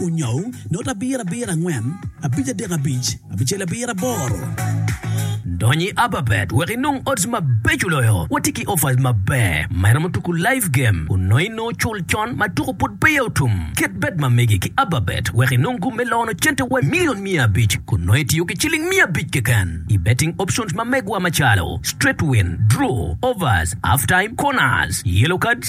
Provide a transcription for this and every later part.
Onyo, not abiro abiro angwen, abic adek abic, abicel abiro aboro. Dony i Ababet wek inong odds mabeco loyo. Watye ki offers maber ma iromo tuku live game onongo i nongo cul con ma tuku pud peya otum. Ket bet ma megi ki Ababet wek inong gum me lono cente wa milion miya abic kun nongo itiyo ki ciling miya abic keken i betting options ma megwa macalo, straight win, draw, overs, half time, corners, yellow cards,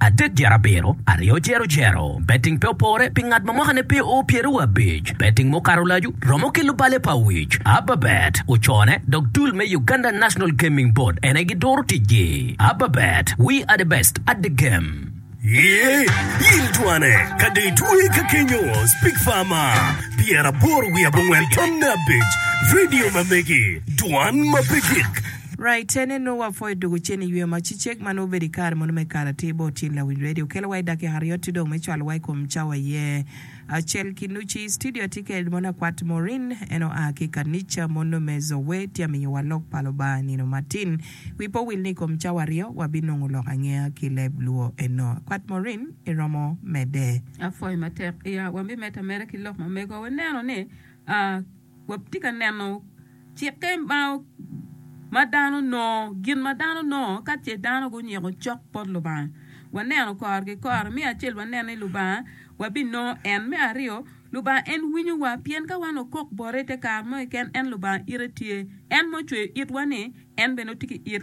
Adek dyere abiro, aryo dyero dyero. Betting pe opore pi ngat ma mwakane pe oo pyeraryo wa abic. Betting ma okato lacu romo ki lubale pa wic. Ababet ocone dok dul me Uganda National Gaming Board ene giduro ticgi. Ababet, we are the best at the game. Iye, il twane ka dong itweye ka kenyo, Speak Farmer, pyeraboro wiye abongwen tamne abic, Video ma megi, Dwan ma pe gik. Raitene nongo wapwo i doko cen i yweyo ma cicek ma nongo obedo i kare mono me kare atir bot cen lawiny redio. Kelowa i dakika aryo ti dong me cwalowa i kom cawa iye acel ki nuci. I citidio atye kede mono akwat Maureen, en oa ki i kanica mono me Zoe. Tye amiyowa lok pa Lubanga nino matin. Wi pe owil ni i kom cawa aryo wabinongo lok angeya ki leb Luo eno. Akwat Maureen, iromo medde? Apwoyo matek. Iya wambi medde ameda ki lok ma mego. Waneno ni, a. Watye ka neno cikke ma ma dano nongo, gin ma dano nongo ka ce dano gunyiko cok bot Lubanga. Waneno kore ki kore, me acel waneno ni Lubanga wabinongo en, me aryo Lubanga en winyowa pien ka wan okok bote ite kare mo keken en Lubanga ite tye, en ma ocweyo itwa-ni en bene tye ki it.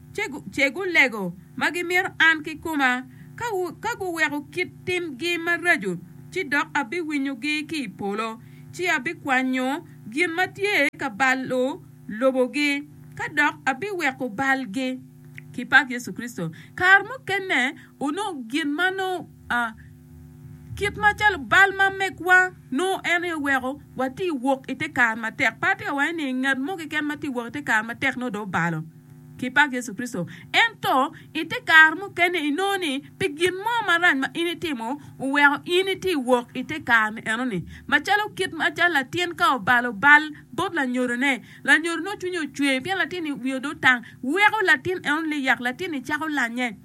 ce gulego ma gimito an kikoma. Ka guweko kit timgi maraco, ci dok abiwinyogi ki i polo, ci abikwanyo gin ma tye ka balo lobogi, ka dok abiweko balgi. Kipak Yecu Kricito! Kare mukene onongo gin ma nongo kit macalo bal ma megwa nongo en aye weko watye wok i te kare matek. Pe atye ka waco ni ngat mo keken ma tye wok i te kare matek nongo dong obalo. ki pak Yecu Kricito. Ento, i te kare mukene inongo ni pi gin mo marac ma in itimo, oweko in iti wok i te kare-ni eno-ni. Macalo kit ma jal latin ka obalo bal bot lanyodone, lanyodone cwinye ocwer pien latin-ni wiye odong tang, weko latin eno liyak, latin-ni cako lanye.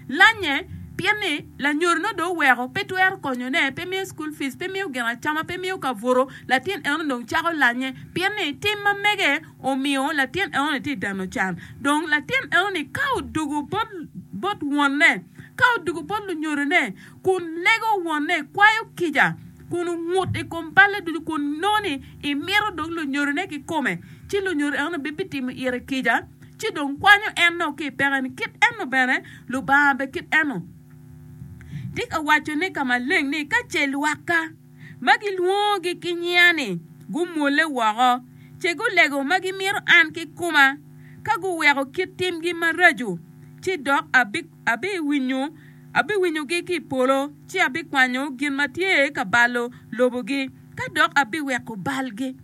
Lanye, pien ni lanyodo nongo dong oweko, pe twero konyone, pe miyo cukul fic, pe miyo gin acama, pe miyo ka buto, latin eno dong cako lanye, pien ni tim ma mege omiyo latin eno-ni tye dano can. Dong latin eno-ni ka odwogo bot wonne, ka odwogo bot lunyodone, kun lego wonne, kwayo kica, kun ongut i kom balle ducu, kun nongo ni imito dong lunyodone kikome, ci lunyodo eno-ni bibitimo ite kica, ci dong kwanyo en dong ki i pekeni, kit eno bene Lubanga be kit eno. Tye ka waco ni ka maleng ni ka ce lwakka ma gilwongogi ki nyinga-ni gumwolle woko, ce gulego ma gimito an kikoma, ka guweko kit timgi maraco, ci dok abiwinyogi ki i polo, ci abikwanyo gin ma tye ka balo lobogi, ka dok abiweko balgi.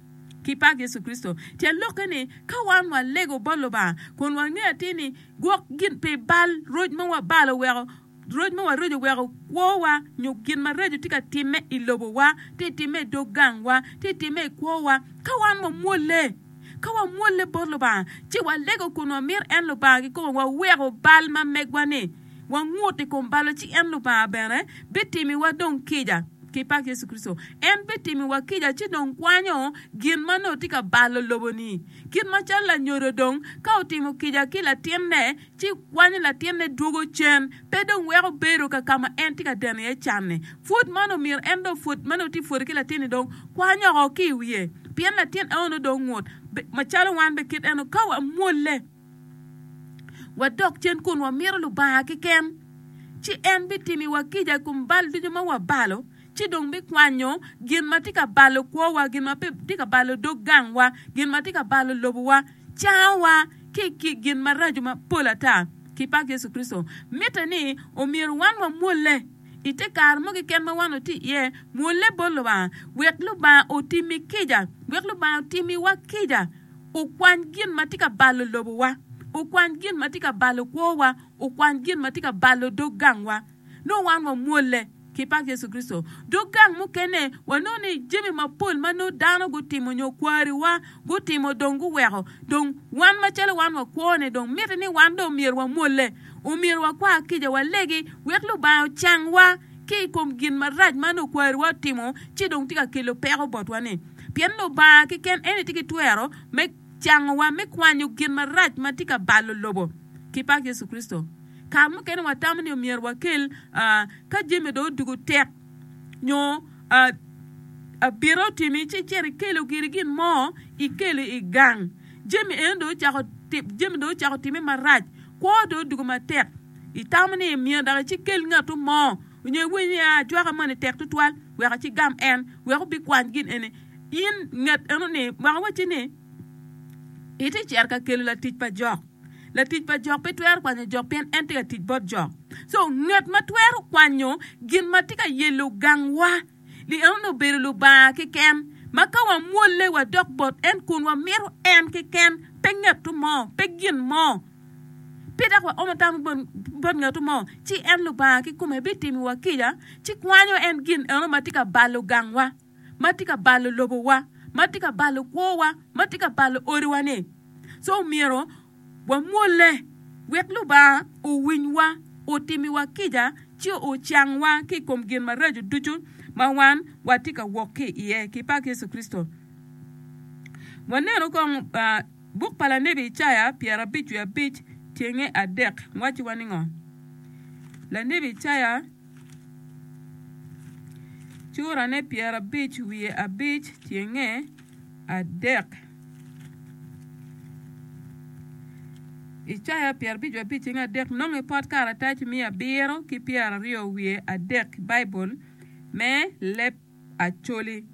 ki pak Yecu Kricito. Tyen lokke ni, ka wan walego bot Lubanga kun wangeyo atir ni gwok gin pi bal roc ma wabalo weko roc ma waroco oweko kwowa nyo gin maraco tye ka timme i lobowa, tye timme i dog gangwa, tye timme i kwowa, ka wan wamwolle, ka wamwolle bot Lubanga, ci walego kun wamito en Lubanga kikome, waweko bal ma megwa-ni. wangut i kom balo ci en, Lubanga, bene bitimiwa dong kica. Ki pak Yecu Kricito! En bitimiwa kica ci dong kwanyo gin ma nongo tye ka balo lobo-ni. Kit macalo lanyodo dong ka otimo kica ki latinne ci kwanyo latinne dwogo cen, pe dong weko bedo ka ka ma en tye ka deno iye can-ni. Pud man omyero en dong pwod ma nongo tye pwode ki latin-ni dong kwany oko ki i wiye, pien latin enoni dong ngut, macalo wan bene kit enoni ka wamwolle. wadok cen kun wamito Lubanga keken, ci en bitimiwa kica i kom bal ducu ma wabalo, ci dong bikwanyo gin ma tye ka balo kwowa, gin ma tye ka balo dog gangwa, gin ma tye ka balo lobowa, cangowa ki i gin maraco mapol ata. Kipag Yecu Kricito! Mitte ni omyero wan wamwolle. I te kare mo keken ma wan watye iye, mwolle bot Lubanga wek Lubanga otimmi kica, wek Lubanga otimmiwa kica, okwany gin ma tye ka balo lobowa, okwany gin ma tye ka balo kwowa, okwany gin ma tye ka balo dog gangwa. Nongo wan wamwolle. Ki pak Yecu Kricito! Dog gang mukene, wanongo ni jami mapol ma nongo dano gutimo nyo kwariwa, gutimo dong guweko dong wan macalo wan wakwone dong miti ni wan dong myero wamwolle, omyero wakwar kica walegi wek Lubanga ocangwa ki i kom gin marac ma nongo kwariwa otimo ci dong tye ka kelo peko botwa-ni. Pien Lubanga keken en aye tye ki twero me cangowa me kwanyo gin marac ma tye ka balo lobo ki pak Yecu Kricito. Kare mukene watamo ni myero wakel ka jami dong odwogo tek. nyo abito timi ci icito ikelo giri gin mo ikelo i gang jami eni dong ocako jami dong ocako time marac kwo dong odwogo matek itamo ni myero dok ici ikel ngatu mo nyo iwiny ni aa cwaka moni tek tutwal wek aci igam en wek obikwany gin eni in nget enoni wek awac-ci ni iti cito ka kelo latic pa jok Latic pa jok pe twero kwanyo jok pien en tye ka tic bot jok. So ngat ma twero kwanyo gin ma tye ka yelo gangwa ni enoni obedo Lubanga keken, ma ka wamwolle wadok bot en kun wamito en keken, pe ngatu mo, pe gin mo, pe dok waomo tam bot ngatu mo, ci en Lubanga kikome bitimiwa kica ci kwanyo en gin enoni ma tye ka balo gangwa. ma tye ka balo lobowa, ma tye ka balo kwowa, ma tye ka balo odiwa-ni. So omyero wamwolle wek Lubanga owinywa, otimiwa kica, ci ocangwa ki i kom gin maraco ducu ma wan watye ka wok ki iye. Ki pak Yecu Kricito! Wanenu kong buk pa lanebi Icaya pyerabic wiye abic tyenge adek wacowa ningo? Lanebi Icaya. Curane pyerabic wiye abic tyenge adek. Icaya pyerabic wiye abic tyenge adek nongo i pot karatac miya abiro ki pyeraryo wiye adek, Baibul me leb Acholi.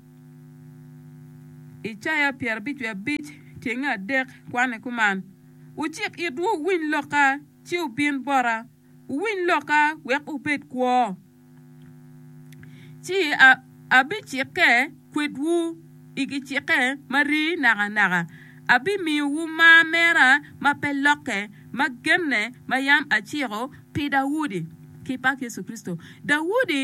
Icaya pyerabic wiye abic tyenge adek kwane kuman, Wucik itwu wuwiny lokka, ci wubin bota. Wuwiny lokka wek wubed kwo, ci abicikke kwedwu i gicikke ma rii nakanaka, abimiyowu mar mera ma pe lokke, ma genne ma yam aciko pi Daudi, ki pak Yecu Kricito. Daudi.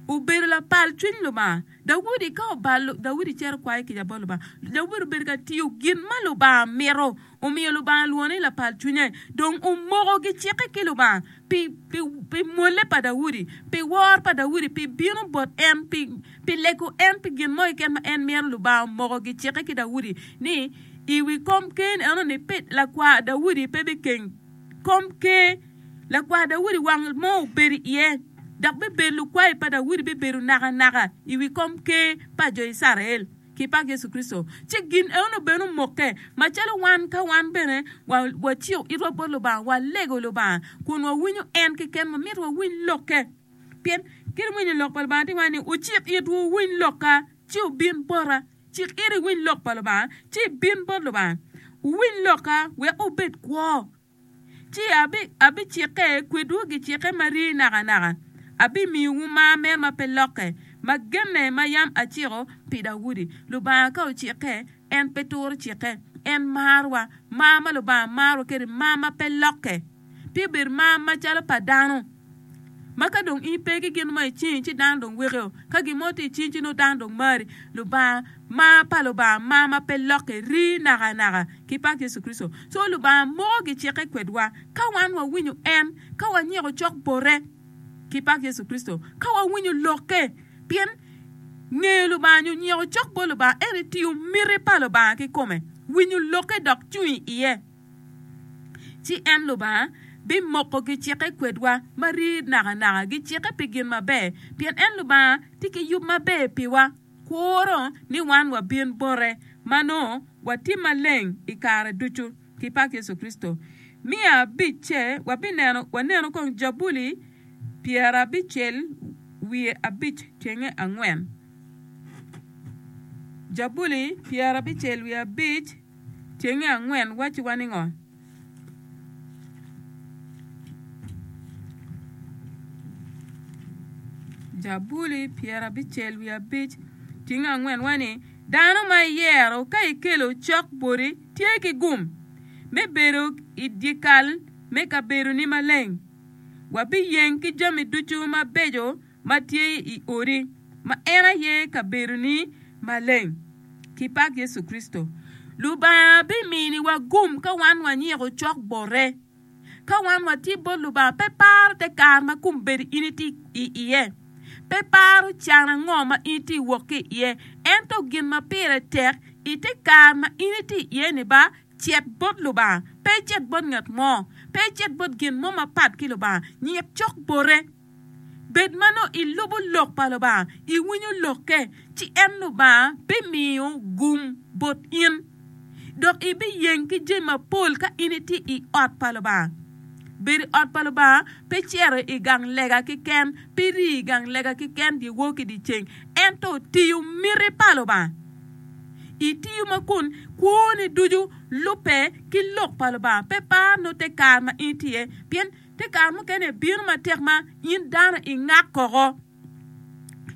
obedo lapal cwiny Lubanga. Daudi ka obalo, Daudi cito kwayo kica bot Lubanga. Daudi obedo ka tiyo gin ma Lubanga mito, omiyo Lubanga lwongo ni lapal cwinye. Dong omoko gicikke ki Lubanga pi, pi, pi mwolle pa Daudi, pi wor pa Daudi, pi bino bot en, pi, pi lego en pi gin mo keken ma en mito. Lubanga omoko gicikke ki Daudi ni i wi kom keni eno-ni pe, lakwar Daudi pe bikeng. kom ker, lakwar Daudi wang mo obedo iye, dok bibedo lukwayo pa Daudi bibedo nakanaka i wi kom ker pa jo Icrael ki pa Yecu Kricito. Ci gin eno bene omokke macalo wan ka wan bene waciko itwa bot Lubanga, walego Lubanga, kun wawinyo en keken ma myero wawiny lokke. Pien kit winyo lok pa Lubanga tye wai ni, Wucik itwu, wuwiny lokka, ci wubin bota. Cik iri iwiny lok pa Lubanga, ci ibin bot Lubanga. Wuwiny lokka, wek wubed kwo, ci abicikke kwedwu gicikke ma rii nakanaka, abimiyowu mar mere ma pe lokke, ma genne ma yam aciko pi Daudi. Lubanga ka ocikke, en pe turo cikke. En marwa. Mar ma Lubanga marowa kwede mar ma pe lokke, pe obedo mar macalo pa dano. ma ka dong in pe ki gin mo i cingi ci dano dong wekeo, ka gin mo tye i cingi ci nongo dano dong mari. Lubanga, mar pa Lubanga mar ma pe lokke, rii nakanaka. Ki pak Yecu Kricito. Co Lubanga moko gicikke kwedwa ka wan wawinyo en, ka wanyiko cok bote. Ki pak Yecu Kricito. Ka wawinyo lokke. Pien ngeyo Lubanga nyo nyiko cok bot Lubanga en etiyo miti pa Lubanga kikome, winyo lokke dok cung i iye. Ci en, Lubanga, bimoko gicikke kwedwa ma rii nakanaka, gicikke pi gin maber, pien en, Lubanga, tye ki yub maber piwa, kuro ni wan wabin bote, ma nongo watim maleng i kare ducu. Ki pak Yecu Kricito. Miya abicce, wabineno, wanenu kong Jabuli pyerabicel wiye abic cenge angwen. Jabuli pyerabicel wiye abic. Cenge angwen wacciwa ni ngo? Jabuli pyerabicel wiye abic cenge angwen waci ni, Dano ma iyero ka ikelo cok boti tye ki gum me bedo i dyekal me kabedoni maleng. Wabiyeng ki jami ducu mabeco ma tye i odi, ma en aye kabedoni maleng. Kipak Yecu Kricito! Lubanga biminiwa gum ka wan wanyiko cok bote. Ka wan watye bot Lubanga, pe paro te kare ma kombeddi in itye i iye, pe paro can ango ma in itye wok ki iye, ento gin ma pire tek i te kare ma in itye i iye-ni ba, cet bot Lubanga, pe icet bot ngat mo, pe icet bot gin mo mapat ki Lubanga, nyik cok bote. Bed ma nongo ilubo lok pa Lubanga, iwinyo lokke, ci en Lubanga bimiyo gum bot in, dok ibiyeng ki jami mapol ka in itye i ot pa Lubanga. Bedo i ot pa Lubanga pe cito i gang lega keken, pe rii i gang lega keken dyewor ki dyeceng, ento tiyo miti pa Lubanga. Itiyo ma kun kwoni ducu lubbe ki lok pa Lubanga, pe par nongo te kare ma in itye iye, pien Ki kare mukene bino matek ma in dano ingak koko.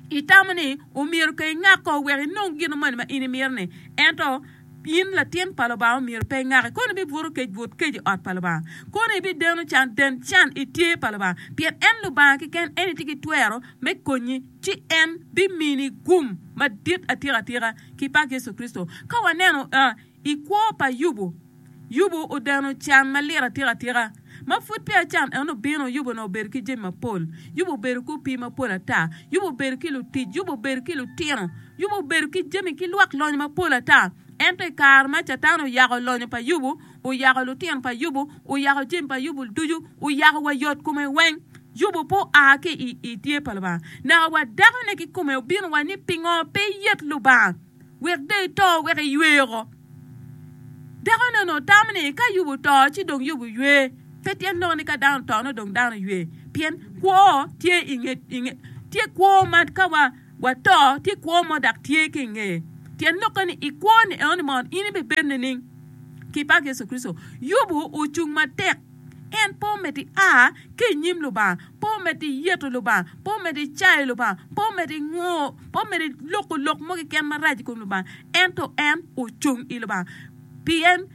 Itamo ni omyero ke ingak koko wek inong gin moni ma in imito-ni. Ento in latin pa Lubanga omyero pe ingaki. Kono ibibuto kec but kec i ot pa Lubanga. Kono ibideno can den can i tye pa Lubanga, pien en Lubanga keken en itye ki twero me konyi, ci en bimini gum madit atika atika. Kipak Yecu Kricito! Ka waneno I kwo pa Yubu, Yubu odeno can malit atika tika. Ma pud peya can en obino, Yubu onongo obedo ki jami mapol. Yubu obedo ki opii mapol ata. Yubu obedo ki lutic. Yubu obedo ki lutino. Yubu obedo ki jami ki lwak lonyo mapol ata. Ento i kare ma Catan oyako lonyo pa Yubu, oyako lutino pa Yubu, oyako jami pa Yubu ducu, oyako wa yot kome weng, Yubu pe oa ki i tye pa Lubanga. Naka wa dakone kikome obino wa ni pingo pe iyet Lubanga? Wek dong ito wek iywe woko. Dakono onongo otamo ni ka Ayub oto ci dong Ayub oywe. Pe tyen loko ni ka dano oto nongo dong dano oywe. Pien kwo tye i nge, i nge, tye kwo ma ka wa, wato tye kwo mo dok tye ki i nge. Tyen lokke ni i kwoni enoni mono in ibibed nining? Ki pak Yecu Kricito, Yubu ocung matek. En po med i a ki i nyim Lubanga, po med i yeto Lubanga, po med i cayo Lubanga, po med i ngo, po med i loko lok mo keken marac i kom Lubanga. Ento en ocung i Lubanga. Pien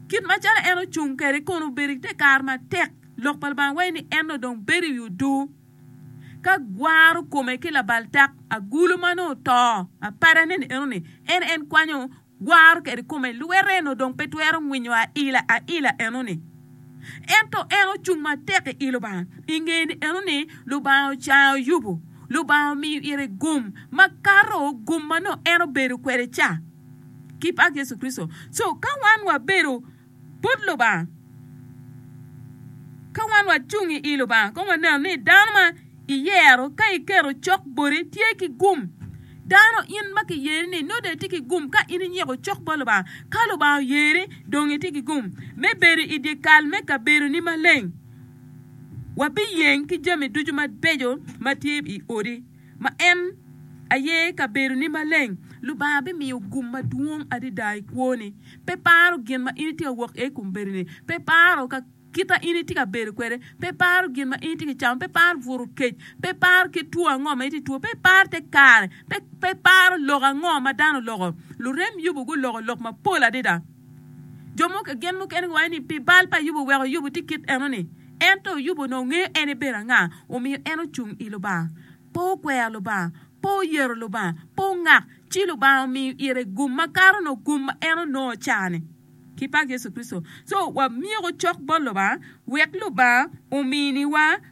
kit macalo en ocung kwede kono obedo i te kare matek, Lok pa Lubanga waco ni en dong bedo i odoo ka gwaro kome ki labal tak agulu ma nongo oto. Apadane ni enoni, en en kwanyo. Gwaro kede kome lwete eno dong pe twero ngwinyo aila aila eno ni. Ento en ocung matek i i Lubanga, i nge ni eno ni Lubanga ocayo Yubu, Lubanga omiyo ire gum ma kato gum ma nongo en obedo kwede ca ki pak Yecu Kricito. So ka wan wabedo. But Lubanga. Ka wan wacung i i Lubanga, kong wanenu ni dano ma iyero ka iketo cok boti tye ki gum. Dano in ma kiyeri ni nongo dong itye ki gum ka in inyiko cok bot Lubanga. Ka Lubanga oyeri, dong itye ki gum me bedo i dyekal me kabedoni maleng. Wabiyeng ki jami ducu mabeco ma tye i odi. ma en aye kabedoni maleng, Lubanga bimiyo gum madwong adada i kwoni. Pe paro gin ma in itye ka wok iye i kom bedoni. Pe paro ka kit ma in itye ka bedo kwede. Pe paro gin ma in itye ka camo. Pe paro bwuru kec. Pe paro kit two ango ma itye ka two. Pe paro te kare. Pe, pe paro lok ango ma dano oloko. Lurem Yubu guloko lok mapol adada. Jo mo gen mukene giwaco ni pi bal pa Ayub oweko Ayub tye kit enoni. Ento Ayub onongo ngeyo en ibedo anga, omiyo en ocung i Lubanga. Pe okwero Lubanga, pe oyero Lubanga, pe ongak, ci Lubanga omiyo ire gum makato nongo gum ma en onongo cani. Kipag Yecu Kricito. So, wamyeko cok bot Lubanga wek Lubanga ominiwa.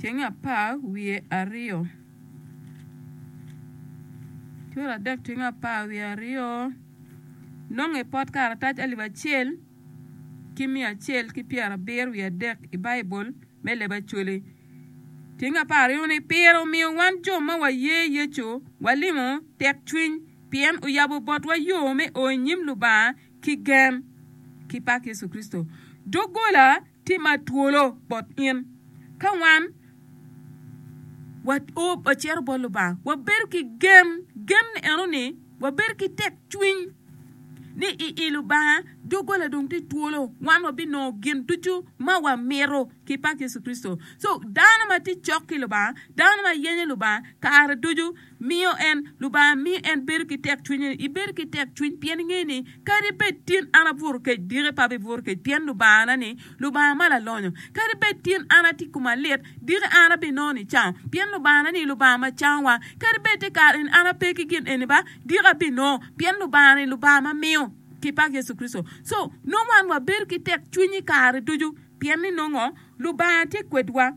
Ceng apar wiye aryo. Cura adek ceng apar wiye aryo. Nonge pot karatac alip acel ki miya acel ki pyera abiro wiye adek i Baibul me leb Acholi. Ceng apar aryo ni pire omiyo wan jo ma waye Yecu walimo tekcwiny pien oyabo botwa yo me o i nyim Lubanga ki gen ki pak Yecu Kricito. Doggola tye ma twolo bot in. Ka wan wacito bot Lubanga, wabedo ki gen, gen enoni wabedo ki tekcwiny ni i i Lubanga doggola dong tye twolo, wan wabinongo gin ducu ma wamito ki pak Yecu Kricito. So dano ma tye cok ki Lubanga, dano ma yenyo Lubanga kare ducu, Miyo en, Lubanga mi en bedo ki tekcwiny-ni, ibed ki tekcwiny pien ingeyo ni kadi bed tin an abuto kec diki pe abibuto kec pien Lubangana-ni Lubanga ma lalonyo. Kadi bed tin an atye i koma lit diki an abinongo nicango pien Lubangana-ni Lubanga ma cangowa. Kadi bed te kare eni an ape ki gin eni ba, diki abinongo pien Lubanga-ni Lubanga ma miyo. Ki pak Yecu Kricito. So, nongo wan wabedo ki tekcwiny i kare ducu pien ni nongo Lubanga tye kwedwa.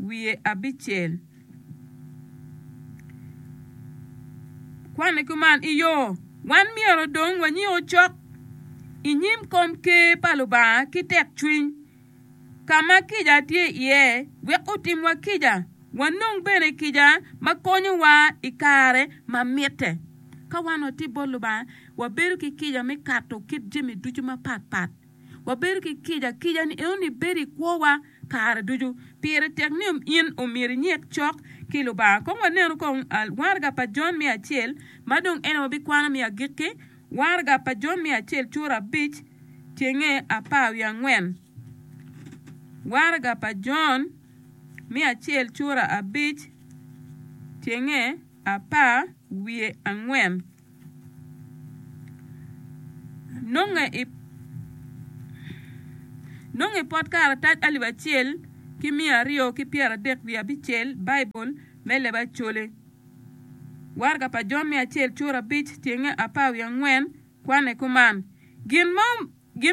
wiye abicel. Kwanne kuman i yo. Wan myero dong wanyiu cok i nyim kom Ker pa Lubanga ki tekcwiny, ka ma kica tye iye, wek otimwa kica, wanong bene kica ma konyowa i kare ma mitte. Ka wan watye bot Lubanga, wabedo ki kica me kato kit jami ducu mapatpat. Wabedo ki kica akica ni enoni bedo i kwowa kare ducu. Pire tek ni in omyero inyik cok ki Lubanga. Kong wanenu kong waraga pa Jon me acel, ma dong en aye wabikwano me agikki. Waraga pa Jon me acel cura abic cenge apar wiye angwen. Waraga pa Jon me acel cura abic cenge apar wiye angwen. Nongo i pot karatac alip acel ki miya aryo ki pyeradek wiye abicel, Baibul me Leb Acoli, Waraga pa Jon me Acel Cur Abic, Tyenge Apar Wiye Angwen, Kwane Kuman. Gin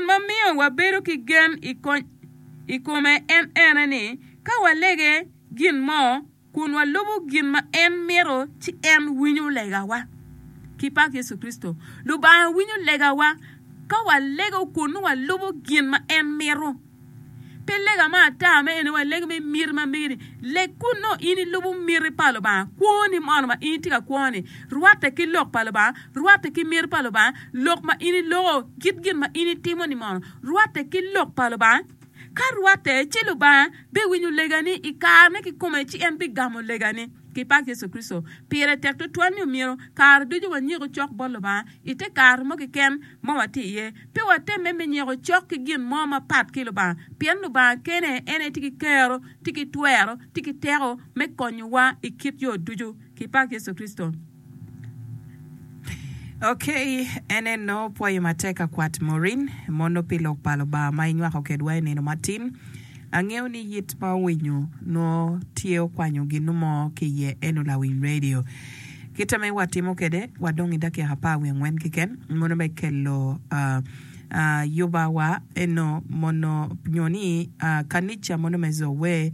ma miyo wabedo ki gen i kome en ene ni ka walege gin mo kun walubo gin ma en mito, ci en winyo legawa. Ki pak Yecu Kricito, Lubanga winyo legawa ka walego kun nongo walubo gin ma en mito. Pe lega ma ata ma en ni waleg me miti ma mege ni, leg kun nongo in ilubo miti pa Lubanga. Kwoni mono ma in itye ka kwo-ni rwatte ki lok pa Lubanga, rwatte ki miti pa Lubanga, lok ma in iloko, kit gin ma in itimo-ni mono rwatte ki lok pa Lubanga. Ka rwatte, ci Lubanga biwinyo legani i kare me kikome ci en bigamo legani. Ki pak Yecu Kricito, pire tek tutwal ni omyero kare ducu wanyiko cok bot Lubanga i te kare mo keken ma watye iye. Pe watemme me nyiko cok ki gin mo mapat ki Lubanga, pien Lubanga kene en aye tye ki kero, tye ki twero, tye ki teko me konyowa i kit yo ducu. Ki pak Yecu Kricito! Ok, en en nongo pwoyo matek ka kwat Maureen mono pi Lok pa Lubanga ma inywako kedwa i nino matin. Angeyo ni yit ma owinyo nongo tye okwanyo ginu mo ki iye eno lawiny radio. Kita me wa timo kede wa dong i dakika apar wiye angwen kiken mono me kelo yuba wa eno mono nyo ni kanica mono me Zoe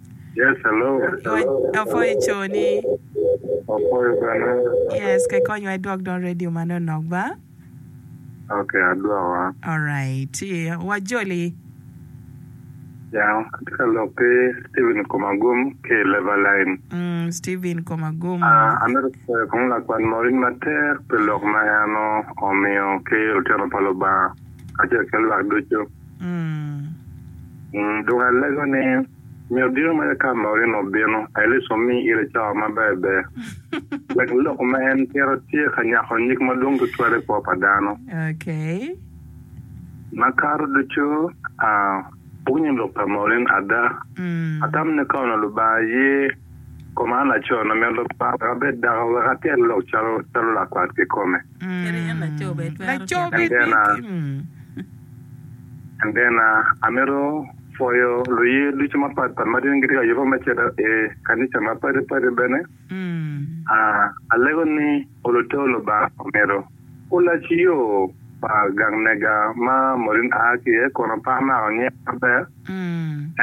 Yes, hello. Apwoc, apwoyo co ni. Apwoyo bene. Yes, ke kony wa idwok dong radio ma no nok ba. Ok, adwoko a. Alright, wa joli. Ya, atye ka lok ki Steven Komagum ki i Lever Line. Mm, Steven Komagum. Ah, an bene apwoyo kong Lakwan Morin matek pi lok ma en omiyo ki lutino pa Lubanga kacel ki lwak ducu. Dong alego ni, Nyo diro mere ka Morino obino, Alice omi ire cawa ma berber, wek lok ma en tito tye ka nyako nyig madwong tutwal i kwo pa dano. Makato ducu, apwonyo lok pa Morin ada. Atam ni ka onongo Lubanga ye, Koma laco na mito para abed dako wek atyel lok calo lakwat kikome. Endena, amito pwoyo luye ducu mapat pat ma gin gitye ka yubbe me cito i kanica mapadi padi bene. Alego ni olu te Lubanga omito. Olac yo pa gang mega ma Maureen a ki iye kono pe amako nying maber,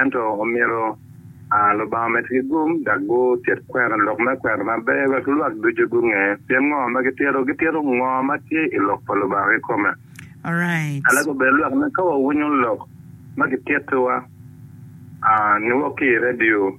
ento omyero a Lubanga omedde ki gum dok gutyek kwena lok me kwena maber wek lwak ducu gunge pien ngo ma gitito, gitito ngo ma tye i Lok pa Lubanga kikome. Alego bene lwak ni ka wawinyo lok ma gitittiwa a ni wok ki i redio,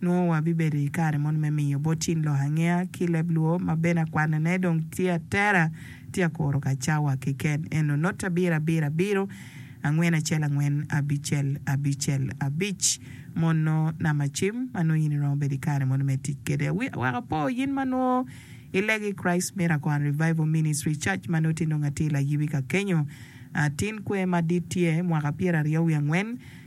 nongo wabibedo i kare moni me miyo bot cing lok angeya ki leb luo ma bene akwanone dong tye atera tye akuro ka cawa keken eno not abiro abiro abiro angwen acel angwen abicel abicel abic mono namba cim ma nongo in iromo bedo i kare moni me tic kede awi awek apo yin ma nongo ilego i Christ Miracle and Revival Ministry Church ma noti nongo atye layibi ka kenyo atin kwe madit tye mwaka pyera aryo wi angwen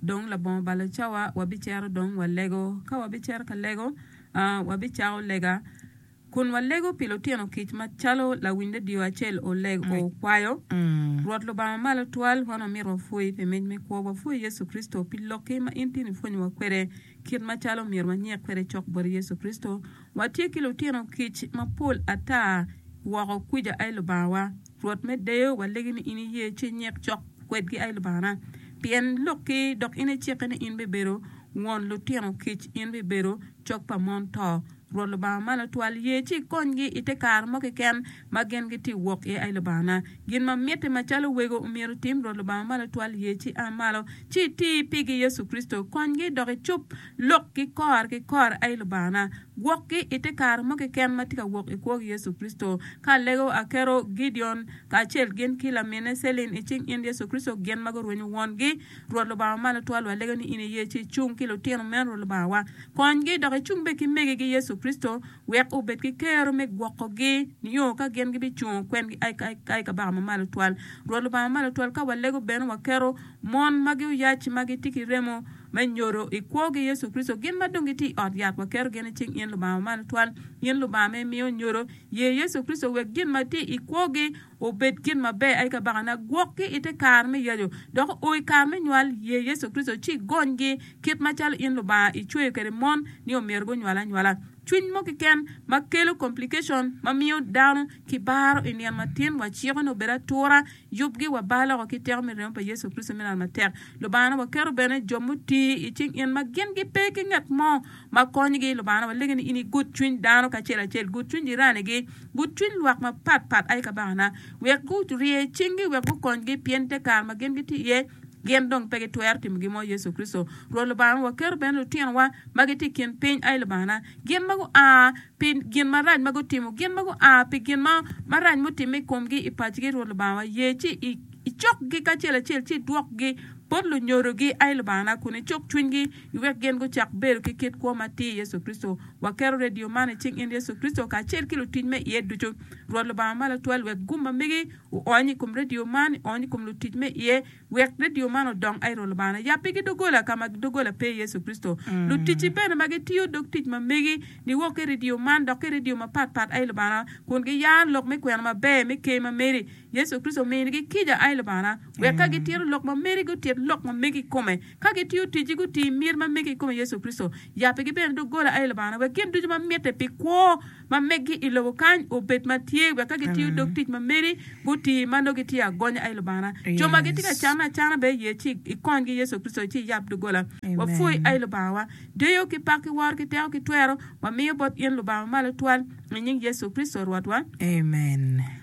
Dong labongo balo cawa wabicero dong walego. Ka wabicero ka lego, wabicako lega kun walego pi lutino kic macalo lawiny ledio acel okwayo. Rwot Lubanga Malo Twal, wan wamito wapwoyi pi mic me kwo. Wapwoyi Yecu Kricito pi lokki ma in tin ipwonyowa kwede. Kit macalo myero wanyik kwede cok bot Yecu Kricito, watye ki lutino kic mapol ata woko kwica aye Lubangawa. Rwot me deyo, walegi ni in iye ci inyik cok kwedgi aye Lubangana, pien lukki dok in icikke ni in bibedo won lutino kic, in bibedo cok pa mon to. Rwot Lubanga Malo Twal ye ci ikonygi i te kare mo keken ma gin gitye wok iye. Ai Lubangana, gin ma mitte macalo wego omyero otim, Rwot Lubanga Malo Twal ye ci a malo ci iti pigi Yecu Kricito. Konygi dok icub lokgi kor ki kor. Ai Lubangana, gwokgi i te kare mo keken ma tye ka wok i kwogi Yecu Kricito. Ka alego akero Gideon kacel gin ki lamine Celine i cing in Yecu Kricito gin ma gurwenyo wongi, Rwot Lubangawa malo twal wa lege ni in iye ci icung ki lutino meno Rwot Lubanga wa konygi dok icung bene ki megi gi Yecu Kricito wek obed ki kero me gwoko gi nio ka gin gi bi cungo kwengi ai kabaka ma malo twal Rwot Lubanga malo twal ka wa lego bene wa keto mon magi oyac ma gi tye ki remo me nyodo i kwo gi Yecu Kricito gin ma dong gi tye i ot yat wa keto gin i cing in Lubanga wa malo twal in Lubanga ma imiyo nyodo ye Yecu Kricito wek gin ma tye i kwo gi obed gin maber aye kabaka na gwok ki ite kare me yaco dok o i kare me nywal ye Yecu Kricito ci igony gi kit macalo in Lubanga i cweyo kede mon ni omyero gunywal anywala cwiny mo kiken ma kelo complication ma miyo dano ki baro i nino matin wa ciko ni obed atura yub gi wa bar loko ki teko me remo pa Yecu Kricito me nano matek Lubanga na wa keto bene jo muti i cing in ma gin gi pe ki nget mo ma konyi gi Lubanga na wa legi ni in i gud cwiny dano kacel acel gud cwiny jirani gi Gucwiny lwak mapat pat aye kabakana, wek gurye cinggi wek gukonygi, pien te kare ma gin gitye iye, gin dong pe gitwero timo gin mo. Yecu Kricito, Rwot Lubanga ma waketo bene lutinowa ma gitye i kin piny, aye Lubangana. Gin ma gua pi gin marac ma gutimo, gin ma gua pi gin ma marac mutimme i komgi i pacigi, Rwot Lubangawa, ye ci icokgi kacel acel, ci idwokgi bot lunyodogi, aye Lubangana, kun icuk cwinygi. wek gin gucak bedo ki kit kwo ma tye i Yecu Kricito. Waketo redio man i cing in Yecu Kricito kacel ki lutic me iye ducu. Rwot Lubanga ma Latwal wek gum ma megi oony i kom redio man, oony i kom lutic me iye, wek redio man odong. Ai Rwot Lubangana, yab pigi doggola ka ma doggola pe i Yecu Kricito. Luticci bene ma gitiyo dog tic ma megi niwok ki redio man dok ki redio mapat pat, ai Lubangana, kun giyaro lok me kwena maber me Ker ma meri. Yecu Kricito ominigi kica, Ai Lubangana, wek ka gitito lok ma meri gutit lok ma megi i kome, ka gitiyo ticci guti mir ma megi i kome Yecu Kricito. Yab pigi bene doggola, Ai Lubangana, wek gin ducu ma mitte pi kwo ma megi i lobo kany obed ma tye, wek ka gitiyo dog tic ma meri guti ma nongo gitye agonya, Ai Lubangana, co ma gitye ka canne acana bene ye ci ikonygi Yecu Kricito, ci iyab doggola. Wapwoyi Ai Lubangawa, deyo ki pak ki woro ki teko ki twero wamiyo bot in Lubanga Mamalo Twal, i nying Yecu Kricito Rwotwa. Amen.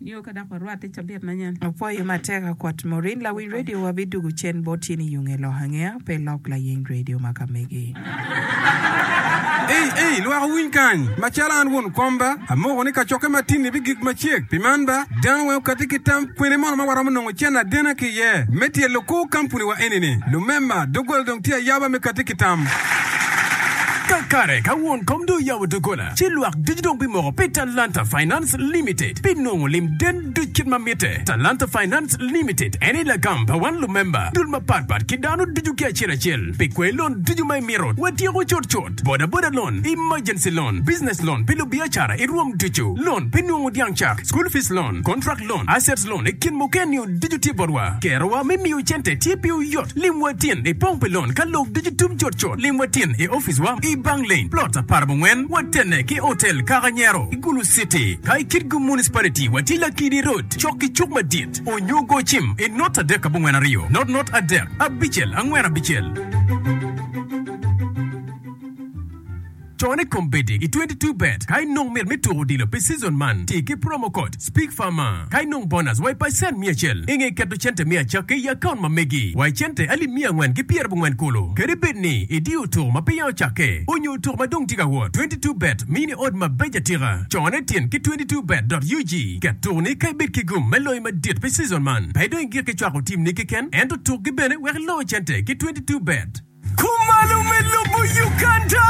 Nio ka dok warwatte cabit manyen. Apwoyo matek akwat Maureen lawic radio wa bi dugu cen bot yen iyunge ilok angeya pe ilok layeny radio ma ka megi. Ei ei lwak owiny kany macalo an won komba amoko ni kacokke matin ni bigik macek pi man ba dano weng okati ki tam kwene mono ma waromo nongo cen adena ki iye me tyelo kor kampuni wa eni ni lumema dogola dong tye ayaba me kati ki tam. Kakare ka won kom dong oyabo dogola ci lwak ducu dong bimoko pi talanta finance. Finance Limited pi nongo lim den duc kit ma mitte. Talanta Finance Limited en aye lagam pa wan lumemba dul mapat pat ki dano ducu ki acel acel pi kwee lon ducu ma imito. Watyeko cut cut, boda boda loan, emergency loan, business loan pi lubiacara i rwom ducu, loan pi nongo dyang cak, school fees loan, contract loan, assets loan i kin mukene-niu ducu tye botwa. Kerowa me miyo cente tye piwu yot. Limwa tin i pong pi lon ka lok ducu tum cut cut. Limwa tin i oficewa i Bang Lane, Plot apar bongwen, watenne ki Hotel Kaka Nyero. Gulu City, ka i Kitgum Municipality wa tye Lakidi Road, cok ki cuk madit, onyo go cim i not adek abongwen aryo, not not adek abicel angwen abicel. Con i kombeddi i twenty two bet ka inong mit me tuko odilo pi season man, ti ki promo code, Speak Farmer. Ka inong bonus wa i pacent miya acel i nge keto cente me acakki i akaunt ma megi wa i cente alip miya angwen ki pyera abongwen kulu, kadi bed ni idiyo otuko ma peya ocakke onyo otuko ma dong tye ka wot. Twenty two bet miyo ni odd mabeco atika. Cone tin ki twenty two bet dot ug ket tuko ni ka ibed ki gum me loyo madit pi season man, pe idong i gik ki cwako team ni keken ento tuk gi bene wek iloo cente ki twenty two bet. Kumalo me lobo Uganda!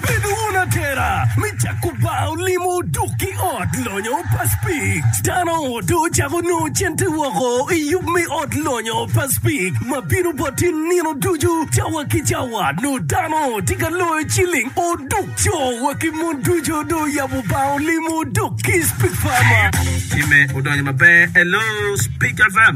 Bed wun atera me cako bar olimo dok ki ot lonyo pa Spik. Dano dong ocako nongo cente woko i yub me ot lonyo pa Spik ma bino boti nino ducu cawa ki cawa. Nongo dano tye ka loyo ciling oduk. Co wa ki mon ducu dong oyabo bar olimo dok ki Spik Farmer. Time odonyo maber. Hello Spik FM.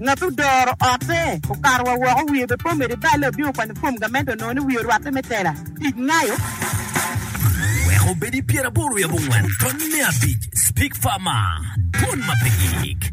Ngat odoro otte okato wa woko wiye be pe omedo ibale obino okwanyo fom gamente onongo ni wiye orwatte me tela tic ngayo. Wek obed i pyeraboro i abongwen tony me abic Speak Farmer Dwon ma pe gik.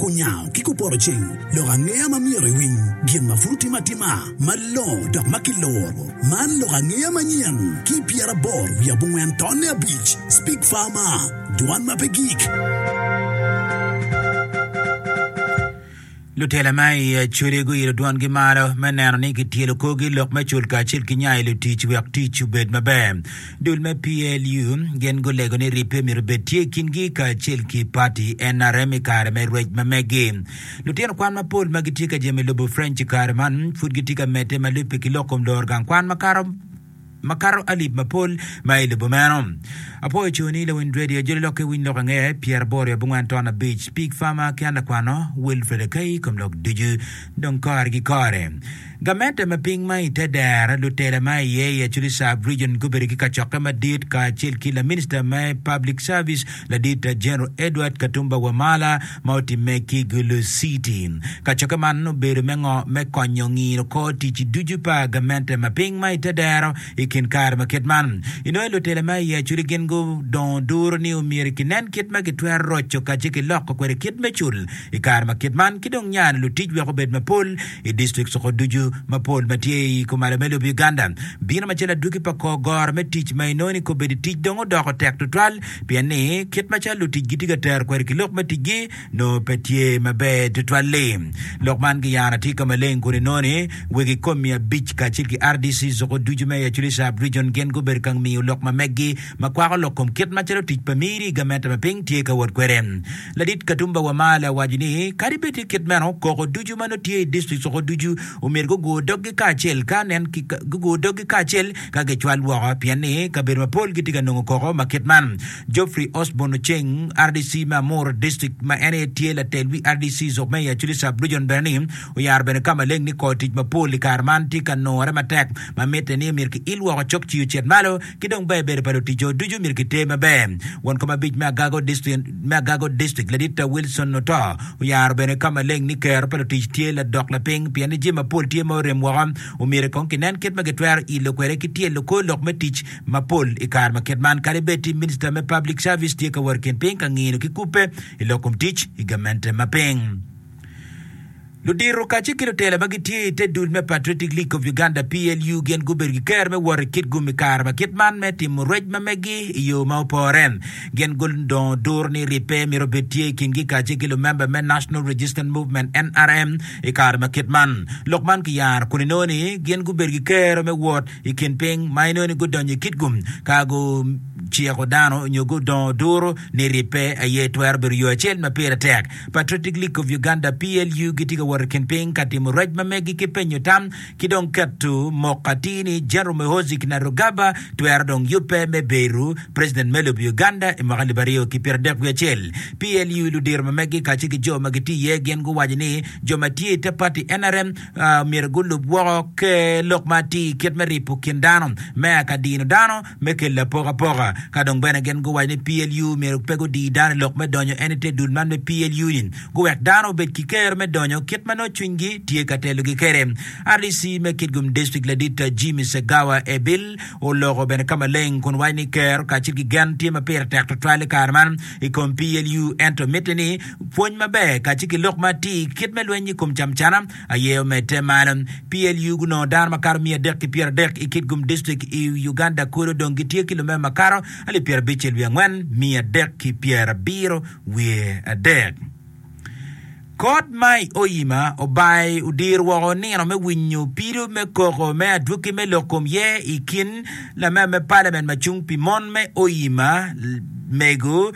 Kunyango ki kupoto ceng lok angeya ma myero iwiny gin ma pud otime atima malongo dok ma kiloro. Man lok angeya manyen ki i pyeraboro wiye abongwen tonne abic, Speak Farmer, Dwan ma pe gik. Lutela ma i Acoli guilo dwangi malo me neno ni kityelo korgi lok me cul kacel ki nya i lutic wek tic obed maber. Dul me PLU gin gulego ni rip pe myero obed tye i kingi kacel ki pati nrm i kare me rwec ma meggi. Lutino kwan mapol ma gitye ka jemo i lobo French i kare man pud gitye ka medde ma lubbe ki lok kom loro gang kwan makato makato alip mapol ma i lobo meno. Apoyo co ni lawiny radio joli lokke winy lok ange pyera boro abongwen ton abic pig fama ki an lakwano Wilfred Akai kom lok ducu dong kore ki kore. Gamente me piny ma i te dero, lutela ma iye i Acholi Sub Region gubedo ki kacokke madit kacel ki Laminista me Public Service Ladit General Edward Katumba Wamala ma otimme ki Gulu City. Kacokke man obedo me ngo? Me konyo ngino kor tic ducu pa gamente ma piny ma i te dero i kin kare ma kit man. Inongo lutela ma i Acholi gin gudongo duru ni omyero kinen kit ma kitwero roco kacel ki loko kwede kit me cul i kare ma kit man ki dong nyano lutic wek obed mapol I district soko ducu mapol ma tye i kumalo me lobo Uganda, bino macalo adwogi pa kor goro me tic ma inongo ni kobedo tic dong odoko tek tutwal pien ni kit macalo lutic gitye ka tero kweri ki lok me ticgi nongo pe tye maber tutwal-li. Lok man giyano atika maleng kun inongo ni wegi kom mia abic kacel ki RDC soko ducu me Acholi Sub Region gin gubedo ka ngiyo lok ma meggi ma kwako lok kom kit macalo tic pa miri i gamente ma piny tye ka wot kwede. Ladit Katumba Wamala owaco ni kadi bed tye kit meno, koko ducu ma nongo tye i dictrict soko ducu omyero gugur doggi kacel ka nen ki gugur doggi kacel ka gicwal woko pien ni kabedo mapol gitye ka nongo koko ma kit man. Geoffrey Osborn Oceng, rdc me Amuru District ma en aye tye latel wi rdc soko me i Acholi Sub Region bene ni oyaro bene ka maleng ni kor tic mapol i kare man tye ka nurre matek ma mitte ni myero ki il woko cok ci ocit malo ki dong ber bedo pa luticco ducu myero giter maber. Won kom abic me Agago District, me Agago District, Laditta Wilson Oto, oyaro bene ka maleng ni kero pa lutic tye ladok lapiny pien ni jami mapol tye ma orem woko, omyero kong kinen kit ma gitwero ilo kwede ki tye lukor lok me tic mapol i kare ma kit man kadi bed ti Minista me Public Service tye ka wot i kin piny ka ngino ki kubbe i lok kom tic i gamente ma piny. Ludito kacel ki lutela ma gitye i te dul me Patriotic League of Uganda, PLU, gin gubedo ki ker me wot i Kitgum i kare ma kit man me timo rwec ma megi i yo ma opore. Gin gudongo duru ni ribbe myero obed tye i kingi kacel ki lumemba me National Resistance Movement, nrm, i kare ma kit man. Lok man kiyaro kun inongo ni gin gubedo ki kero me wot i kin piny ma inongo ni gudonyo i Kitgum ka guciko dano nyo gudongo duru ni ribbe aye twero bedo yo acel ma pire tek Patriotic League of Uganda, PLU, gitye ka wot i kin piny ka timo rec ma megi ki penyo tam ki dong keto mok atir ni General Muhoozi Kainerugaba twero dong yubbe me bedo President me lobo Uganda i mwaka alip aryo ki pyerardek wiye acel. PLU ludiro ma megi kacel ki jo ma gitye iye gin guwaco ni jo ma tye i te pati nrm myero gulub woko ker lok ma atir kit me ripo kin dano, meya ka dino dano, me kelo apokapoka, ka dong bene gin guwaco ni PLU myero pe gudi dano i lok me donyo en i te dul man me PLU-ni guwek dano obed ki kero me donyo kit ma nongo cwinygi tye ka telogi kwede. RDC me Kitgum District ladit Jimmy Segawa Ebil oloko bene ka maleng kun waco ni kero kacel ki gen tye ma pire tek tutwal i kare man i kom PLU ento mitte ni pwony maber kacel ki lok ma atir kit me lweny i kom camcana Aye omedde malo. PLU gunongo dano makato miya adek ki pyeradek i Kitgum District i Uganda kono dong gitye ki lumeo makato alip pyerabic wiye angwen, miya adek ki pyerabiro wiye adek. Kot ma i Oyima obaye odiro woko nino me winyo pido me koko me adwoki me lok kom ye i kin lamema me Parliament macung pi mon me Oyima, Mego,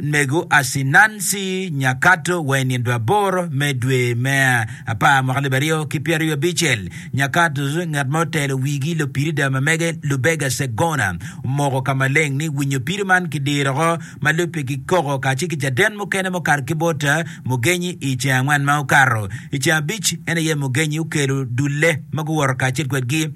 Mego Asinansi Nyakato wa i nino aboro me dwe me apar mwaka alip aryo ki pyeraryo wiye abicel, Nyakato ngat ma otelo wigi Lupirida ma mege Lubega Segona omoko ka maleng ni winyo pido man ki diro oko ma lubbe ki koko kacel ki caden mukene mukato ki bot Mugenyi i ceng angwen ma okato. I ceng abic en aye Mugenyi okelo dulle ma guwoto kacel kwedgi.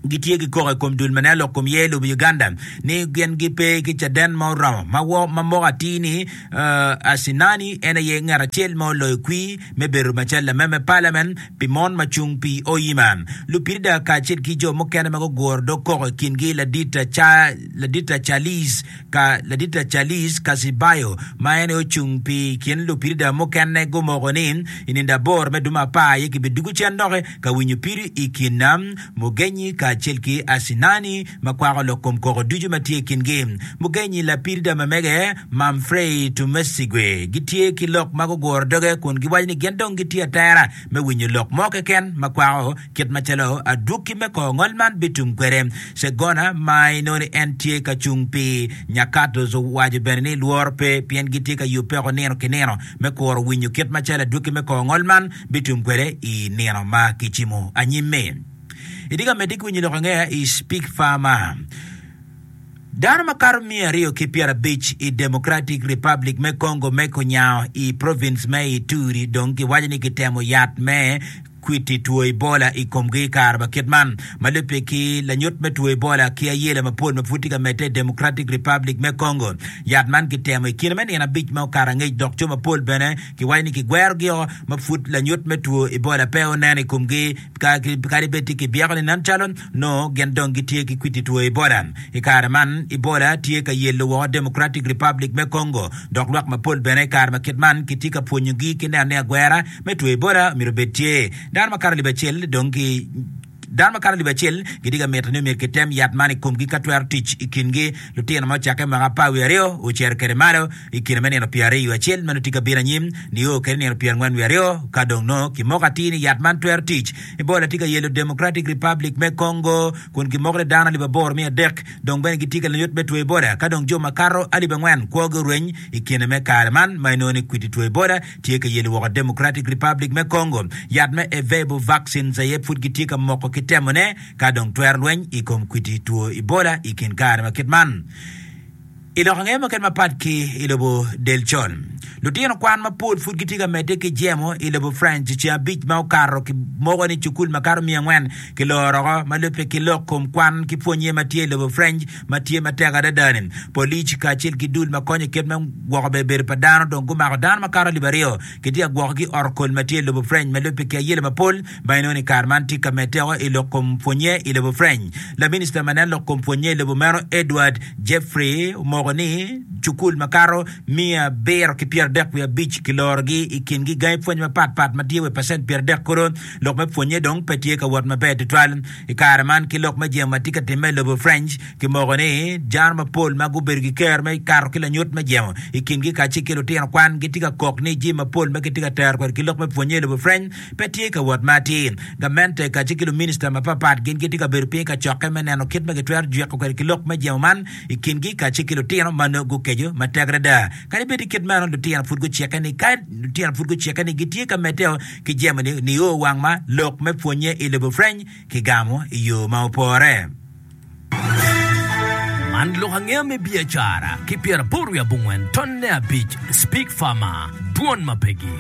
gitye ki koko i kom dul ma nen lok kom ye lobo Uganda ni gin gipe ki caden ma oromo ma wo ma moko atir ni uh, Asinani en aye ngat acel ma oloyo kwir me bedo macalo lame me Parliament pi mon ma cung pi Oyima. Lupirida kacel ki jo mukene ma guguro dog koko i kingi ladit Cha, ladit Charles ka, ladit Charles Kasibayo ma en aye ocung pi kin lupirida mukene gumoko ni i nindo aboro me dumo apar aye kibidugo cen doki ka winyo piri i kin nam mugenyi kacel ki acinani ma kwako lok kom koko ducu ma tye i kingi. Mugenyi lapiri Damamege, Mamfrey Tumwesigwe, gitye ki lok ma guguro doge kun giwaco ni gin dong gitye atera me winyo lok mo keken ma kwako kit macalo adwoki me kor ngol man bitum kwede. Segona ma inongo ni en tye ka cung pi Nyakatto's owaco bene ni lworo pe pien gitye ka yubbe woko nino ki nino me kuro winyo kit macalo adwoki me kor ngol man bitum kwede i nino ma kicimo anyim-mi. Itye ka medde ki winyo lok angeya i Speak Farmer? Dano makato miya aryo ki pyerabic i Democratic Republic me Congo me Kunyaho i province me Ituri dong giwaco ni gitemo yat me kwiti two Ebola i komgi i kare ma kit man. Ma lubbe ki lanyut me two Ebola ki ayela mapol ma pud tye ka medde i Democratic Republic me Congo, yat man gitemo i kine me nino abic ma okato angec dok jo mapol bene Kiwaco ni kigwerogi-o ma pud lanyut me two Ebola pe onen i komgi. Kadi bed tye kibyeko ni nen calo nongo gin dong gitye ki kwidi two Ebola, i kare man Ebola tye ka yelo woko Democratic Republic me Congo, dok lwak mapol bene i kare ma kit man kitye ka pwonyogi ki neno ni agwera me two Ebola myero obed tye. Dano makato alip acel dong ki. Dano makato alip acel gitye ka mito ni omyero kitem yat man i komgi ka twero tic i kingi. Lutino ma ocakke mwaka apar wiye aryo ocito kwede malo i kine me nino pyeraryo wiye acel ma nongo tye ka bino anyim nio kede nino pyerangwen wiye aryo ka dong nongo kimoko atir ni yat man twero tic Ebola tye ka yelo Democratic Republic me Congo kun kimoko ni dano alip aboro miya adek dong bene gitye ka lanyut me two Ebola ka dong jo makato alip angwen kwogi orweny i kine me kare man ma inongo ni kwiti two Ebola Tye ka yelo woko Democratic Republic me Congo yat me Ervebo vaccines aye pud gitye ka moko ki temone ka dong twero lweny i kom kwidi two Ebola i kin kare ma kit man. I lok ange mukene mapat ki i lobo Delchon, lutino kwan mapol pud gitye ka medde ki jemo i lobo France ceng abic ma okato ki moko ni cukul makato miya angwen ki loro woko ma lubbe ki lok kom kwan ki pwonye ma tye i lobo French ma tye matek adada-ni. Polic kacel ki dul ma konyo i kit me gwoko bedo pa dano dong gumako dano makato alip aryo kitye ka gwokogi i ot kol ma tye i lobo French ma lubbe ki ayele mapol ma inongo ni kare man tye ka medde woko i lok kom pwonnye i lobo French. Laminista ma nen lok kom pwonnye i lobo meno, Edward Jeffrey, omoko ni cukul makato miya abiro ki pyeradek wiye abic kilorogi i kingi gangi pwony mapatpat ma tye wa i pacent pyeradek kono lok me pwonnye dong pe tye ka wot maber tutwal. I kare man, ki lok me jemo ma tye ka timme i lobo French, kimoko ni jaro mapol ma gubedo ki ker me kato ki lanyut me jemo i kingi kacel ki lutino kwan gitye ka kok ni jami mapol ma kitye ka tero kwede ki lok me pwonnye i lobo French pe tye ka wot ma atir. Gamente kacel ki luminista mapatpat gin gitye ka bedo piny i kacokke me neno kit ma kitwero jweko kwede ki lok me jemo man i kingi kacel ki lutino ma nongo gukeco matek adada. Kadi bed tye kit meno, lutino pud gucikke ni gitye ka medde ki jami nio wang ma lok me pwonnye i lobo pwreny ki gamo i yo ma opore. Man lok angeya me biacara ki pyeraboro wiye abongwen tonne abic Speak Farmer, Dwon ma Pegi.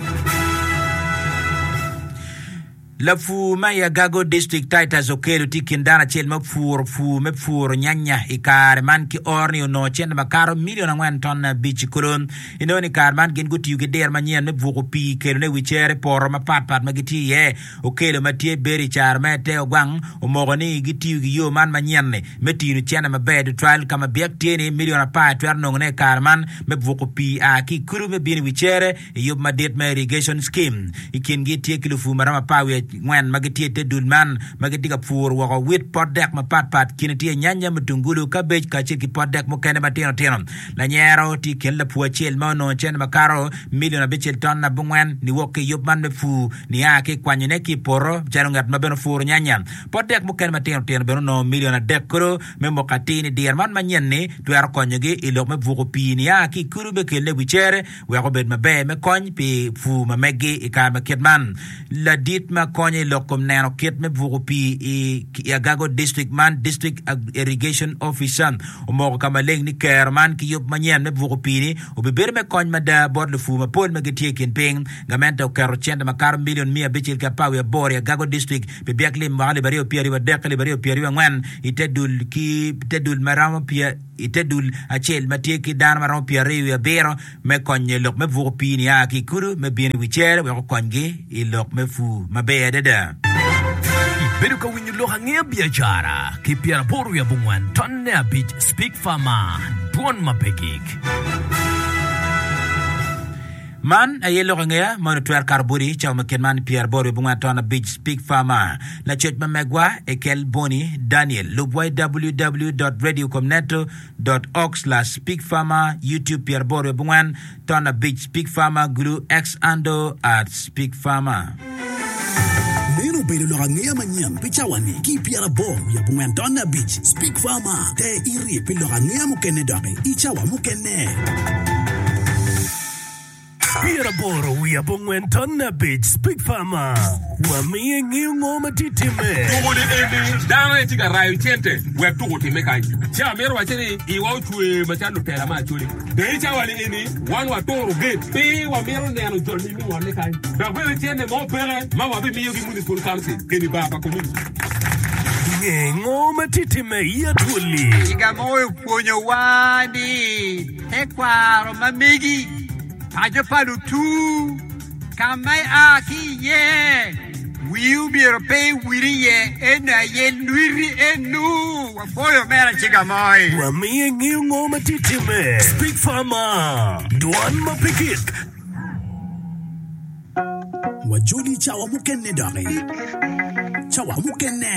Lapur ma i Agago District Titus Okello tye kin dano acel ma opuro pur me puro nyanya i kare man ki oro ni onongo cente makato milion angwen tonne abic kulu. Inongo ni kare man gin gutiyo ki diro manyen me buko pii kelone i wi cere i poto mapat pat ma gitye iye. Okello ma tye Berry i caro me te ogwang omoko ni gitiyo ki yo man manyen-ni me tino cene maber tutwal ka ma byek tye ni milion apar twero nongone i kare man me buko pii a ki i kulu me bino i wi cere i yub madit me irrigation scheme. I kingi tye ki lupur ma romo apar wiye angwen ma gitye i te dul man ma gitye ka puro woko wit, pot dek mapat pat, kine tye nyanya, mutungulu, kabej kacel ki pot dek mukene matino tino. Lanyero tye i kin lapur acel ma onongo cente makato milion abicel ton abongwen niwok ki i yub man me pur nia ki i kwanyone ki i poto calo ngat ma bene puro nyanya. Pot dek mukene matino tino bene onongo milion adek kodo me moko atir ni diro man manyen-ni twero konyogi i lok me buko pii nia ki i kulu me kelle i wi cere wek obed maber me kony pi pur ma meggi i kare ma kit man. Ladit ma konyo i lok kom neno kit me buko pii i Agago District man, District Irrigation Officer, omoko ka maleng ni kero man ki yub manyen me buko pii-ni obibedo me kony mada bot lupur mapol ma gitye i kin piny. Gamente oketo cente makato milion miya abicel ki apar wiye aboro i Agago District pi byek lim mwaka alip aryo pyeraryo wadek ki alip aryo pyeraryo angwen i te dul ma romo i te dul acel ma tye ki dano ma romo pyeraryo wiye abiro me konyo i lok me buko pii nia ki i kudu me bino i wi cere wek okonygi i lok me pur maber adada. Ibedo ka winyo lok angeya biacara ki pyeraboro wiye abongwen ton ne abic Speak Farmer Dwon ma pe gik. Man aye lok angeya ma onongo twero kato boti cawa ma kit man pyeraboro wiye abongwen ton abic Speak Farmer. Lacoc ma megwa e kel Bonny Daniel. Lubwa i www.radiocomneto.org/speakfarmer Youtube pyeraboro wiye abongwen ton abic speakfarmer gulu xando at speakfarmer. Meno obedo lok angeya manyen pi cawani ki i pyeraboro wiye abongwen ton abic speakfarmer. Te iri pi lok angeya mukene doki i cawa mukene. Pyeraboro wiye abongwen ton abic Speak Farmer wamiyo ingeyo ngo ma tye timme. Tuko ni eni dano aye tye ka rayo cente wek tuko otimme kany. Ci amito wacce ni iwa ocwe macalo lutela me Acholi. Dong i cawa ni eni wan waturo gate pi wamito neno jol ma imiyowane kany dok bene cente mo peke ma wabimiyo ki Municipal Council keni bar pa community. Inge ngo ma tye timme i Acholi? Ciga mo opwonyowa ni. Tekwaro ma megi, paco pa lutur, ka ma ia ki iye, wii omyero pe iwil iye, eno aye lwiti eno. Wapoyo omera Ciga Moi. Wamiye ngeyo ngo ma tye timme. Speak Farmer, dwan ma pe kik. Wajoli cawa mukene doki. Cawa mukene.